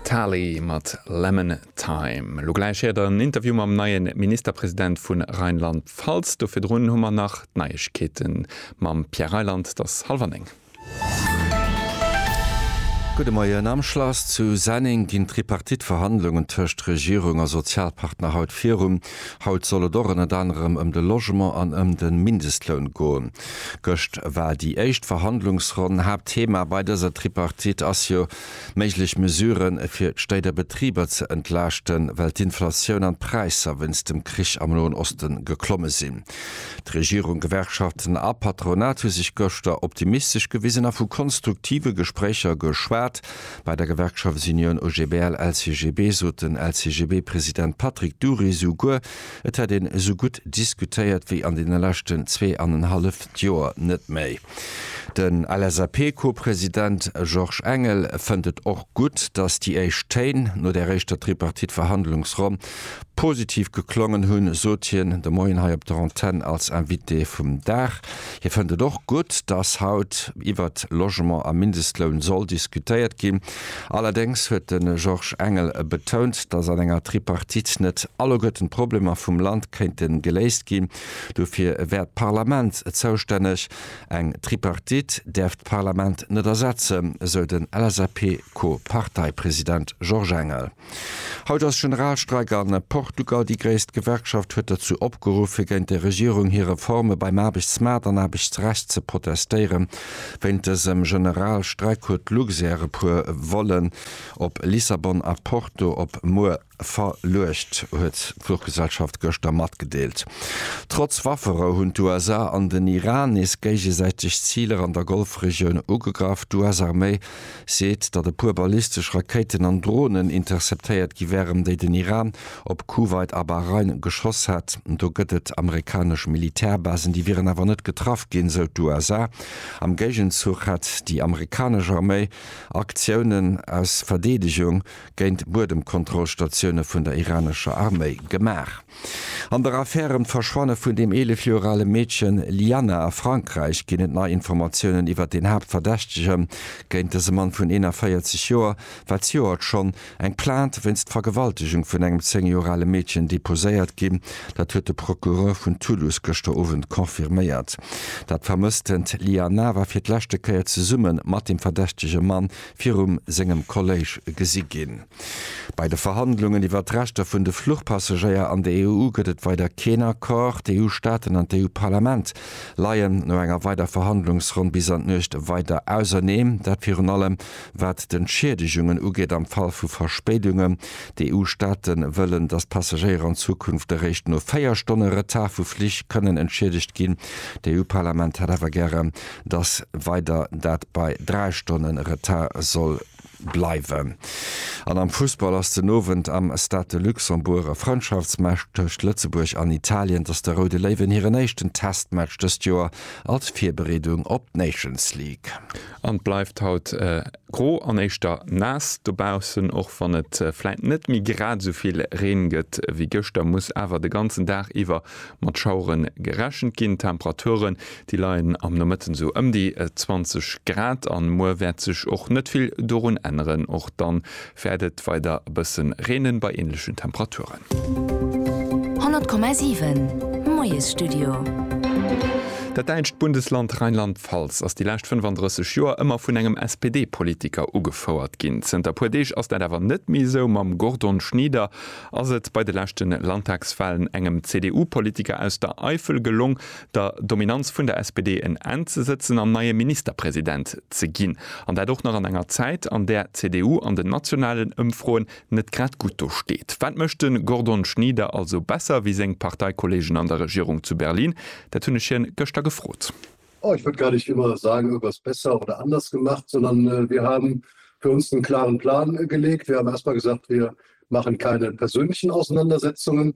D'Tali mat Lemon Time. Elo gläich héiert der en Interview mam neie Ministerpresident vun Rheinland-Pfalz. Do virdrun hu mer nach d'Neiegkeete mam Pierre Reyland. T'ass hallwer néng. Gudde Moien. Am Schlass zu Senneng ginn d'Tripartite-Verhandlungen tëscht Regierung a Sozialpartner haut virun. Haut soll et och ënnert anerem ëm de Logement an ëm de Mindestloun goen. Gëscht war déi éischt Verhandlungsronn. Haaptthema bei dëser Tripartite ass jo, méiglech Mesuren, fir d'Stéit a Betriber ze entlaaschten, well d'Inflatioun an d'Präisser wéinst dem Krich am Noen Osten geklomme sinn. D'Regierung, Gewerkschaften a Patronat hu sech gëschter optimistesch gewisen a vu konstruktive Gespréicher geschwat. Bei der Gewerkschaftsunioun OGBL-LCGB sot den LCGB-President Patrick Dury souguer, Et hätt een esou gutt diskutéiert wéi an deene leschten zwee an en halleft Joer net méi. Den LSAP-Co-President Georges Engel fënnt et och gutt, datt déi éischt Téin no där éischter Tripartite-Verhandlungsronn positiv geklongen hunn, sot hien de Moien hei op der Antenn als Invité vum Dag. Hie fënnt et och gutt, datt haut iwwert Logement a Mindestloun soll diskutéiert ginn. Allerdéngs huet de Georges Engel betount, datt an enger Tripartite net alleguerten d'Problemer vum Land kéinte geléist ginn. Dofir wär d'Parlament zoustänneg. Eng Tripartite däerf d'Parlament net ersetzen, esou den LSAP-Co-Parteipresident Georges Engel. Haut ass Generalstreik a Portugal. Déi gréisst Gewerkschaft huet dozou opgeruff, fir géint der Regierung hir Reforme beim Aarbechtsmaart an Aarbechtsrecht ze protestéieren. Wéint dësem Generalstreik huet Luxair e puer Vollen op Lissabon a Porto op muer verluecht, huet d'Fluchgesellschaft gëschter matgedeelt. Trotz Wafferou hunn d'USA an den Iran nees géigesäiteg Ziler an der Golfregioun ugegraff. D'US-Arméi seet, datt e puer ballistesch Rakéiten an Dronen interceptéiert gi wären, déi den Iran op Kuwait a Bahrain geschoss hätt. Do gëtt et amerikanesch Militärbasen, déi wieren awer net getraff ginn, sou d'USA. Am Géigenzuch hätt déi amerikanesch Arméi Aktiounen aus Verdeedegung géint Buedemkontrollstatioune vun der iranescher Arméi gemaach. An der Affär ëm d'Verschwanne vun dem 11 Joer ale Meedchen Lianna a Frankräich ginn et nei Informatiounen iwwert een Haaptverdächtege géint dëse Mann vun 41 Joer, war zejoert schonn eng Plainte wéinst Vergewaltegung vun engem 10 Joer ale Meedchen deposéiert ginn. Dat huet de Procureur vun Toulouse gëschter Owend confirméiert. Dat vermësstend Lianna war fir d'leschte Kéier zesumme mat dem verdächtege Mann virum sengem Kolléisch gesi ginn. Bei de Verhandlungen iwwert d'Rechter vun de Fluchpassagéier an der EU gëtt et weider keen Accord. D'EU-Staaten an d'EU-Parlament leien no enger weider Verhandlungsronn bis an d'Nuecht weider auserneem. Dat virun allem wat d'Entschieedegungen ugeet am Fall vu Verspéidungen. D'EU-Staate wëllen, datt d'Passagéier an Zukunft eréischt no 4 Stonne Retard vu Flich kënnen entschiedegt ginn. D'EU-Parlament hätt awer gären, datt weider dat bei 3 Stonne Retard soll bleiwen. An am Fussball ass den Owend am Stade de Luxembourg e Frëndschaftsmatch tëscht Lëtzebuerg an Italien. Dass de Roude Léiwen hiren éischten Testmatch dëst Joer als Virbereedung op d'Nations League. An et bleift haut gro an éischter naass dobaussen. Och wann et vläit net méi grad esou vill Reen gëtt wéi gëschter, muss awer de ganzen Dag iwwer mat Schaueren gerechent ginn. D'Temperature Déi leien am Nomëtten sou ëm déi 20 Grad an muer wäert sech och net vill dorun änneren. Och dann wäert et weider e bëssen reenen bei änlechen Temperaturen. 100,7 Moiesstudio. Dat däitscht Bundesland Rheinland-Pfalz ass déi lescht 35 Joer ëmmer vun engem SPD-Politiker ugefouert ginn. Zënter e puer Deeg ass dat awer net méi esou. Mam Gordon Schnieder ass et bei de leschte Landtagswalen engem CDU-Politiker aus der Eifel gelong, der Dominanz vun der SPD en Enn ze sëtzen an neie Ministerpresident ze ginn. An dat och nach an enger Zäit, an där d'CDU an den nationalen Ëmfroen net grad gutt do steet. Wat mécht de Gordon Schnieder also besser wéi seng Parteikollegen an der Regierung zu Berlin? Dat hunn ech hien gëschter gefrot. Oh, ich würde gar nicht immer sagen, irgendwas besser oder anders gemacht, sondern wir haben für uns einen klaren Plan gelegt. Wir haben erst mal gesagt, wir machen keine persönlichen Auseinandersetzungen,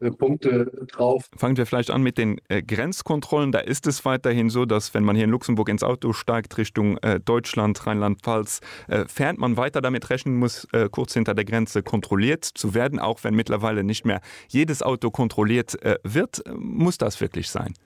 Fangen wir vielleicht an mit den Grenzkontrollen. Da ist es weiterhin so, dass, wenn man hier in Luxemburg ins Auto steigt, Richtung Deutschland, Rheinland-Pfalz fährt, man weiter damit rechnen muss, kurz hinter der Grenze kontrolliert zu werden, auch wenn mittlerweile nicht mehr jedes Auto kontrolliert wird. Muss das wirklich sein?